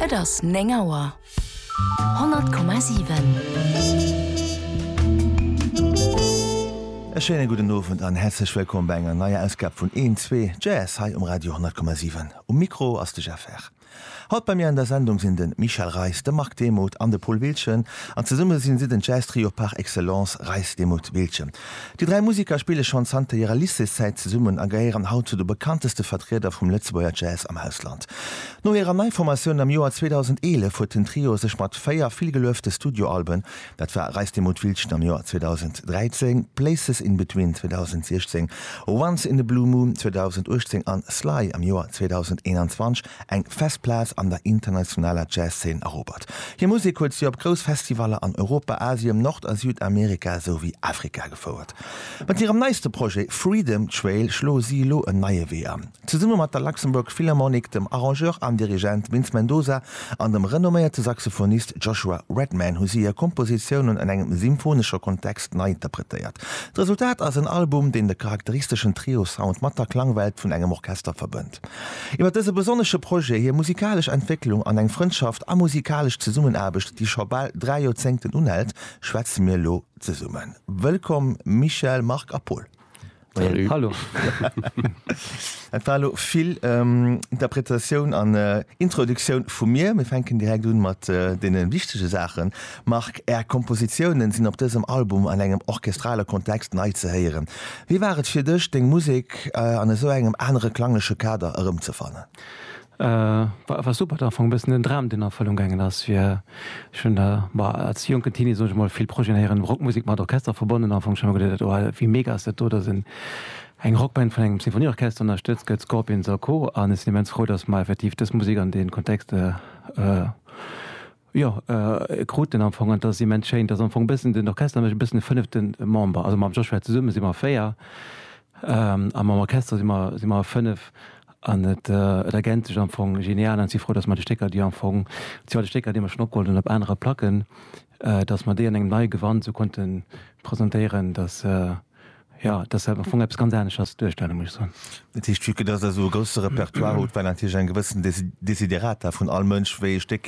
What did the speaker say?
Et ass 9 Auer. 100,7. E schéine gudden Owend an häerzlech wëllkomm bei enger neier Ausgab vun Een Zwee Jazz hei um Radio 10,7. Um Mikro ass de Jeff Herr. Haut bei mir an der Sendung sinn de Michel Reis, de Marc Demuth an de Paul Wiltgen an zesumme sinn si den Jazz Trio par excellence Reis-Demuth-Wiltgen. Déi dräi Museker spille schonn zanter hirer Lycéeszäit zesummen a gehéieren haut zu de bekannteste Vertrieder vum Lëtzebuerger Jazz am Ausland. No hirer Neiformatioun am Joer 2011 huet den Trio sech mat véier villgeluefte Studioalben, dat war Reis dem Mutwilldchen am Joer 2013, Places in Between 2016, Once in a Blue Moon 2018 an Sly am Joer 2021, eng fest Plaz an der internationaler Jazzszen erobert. Hir Musek huet si op grouss Festivaller an Europa, Asien, Nord a Südamerika esou wéi Afrika gefouert. Mat hirem neiste Projet Freedom Trail schloe si elo en neie Wee an. Zesumme mat der Luxembourg Philharmonic, dem Arrangeur an Dirigent Vince Mendoza an dem renomméierte Saxophonist Joshua Redman hu si hir Kompositiounen an engem symphonesche Kontext nei interpretéiert. D'Resultat ass en Album, deen de charakteristeschen Trio-Sound mat der Klangwelt vun engem Orchester verbënnt. Konzert. Iwwer dëse besonnesche Projet, hir musikalesch Entwécklung an eng Frëndschaft a musikalesch Zesummenaarbecht, déi scho bal dräi Joerzéngten unhält, schwätze mir elo zesummen. Wëllkomm Michel, Marc a Paul. Salut. Hallo. Dat war elo vill Interpretatioun an Introduktioun vu mir. Mir fänken direkt un mat deene wichtege Saachen. Marc, Är Kompositiounen sinn op dësem Album an engem orchestrale Kontext nei ze héieren. Wéi war et fir dech, deng Musek an esou engem anere klangleche Kader erëmzefannen? Marc, War super, et war am Fong e bëssen en Dram, deen an Erfëllung gaangen ass, fir ech hunn der, ma als jonken Teenie, soen ech mol, vill Projeten héieren, Rockmusek mat Orchester verbonnen, am Fong hu ech ëmmer geduet, oh wéi mega ass dat do, datt eng Rockband vun engem Sinfonieorchester ënnerstëtzt gëtt, Scorpions a Co. An ech sinn immens frou, datt mer effektiv dës Musek an dee Kontext Jo, e krut en am Fong, an dat ass immens schéin, dass am Fong e bëssen den Orchester, mécht e bëssen de fënnefte Member, also mam Joshua zesumme si mer véier a mam Orchester si mer si mer fënnef an et et ergänzt sech am Fong genial an ech si frou, dass mer déi Stécker, déi am Fong, déi al Stécker, déi mer schonn opgeholl hunn op anere Placken, dass mer déi an engem neie Gewand esou konnte presentéieren, dass jo, dass dat am Fong eppes ganz anescht ass wéi d'Duerstellung, muss ech soen. Dat heescht, vue que dass Der esou e grousse Repertoire hutt, war natierlech eng gewëssen Desiderata vun all Mënsch, wéi ee Stéck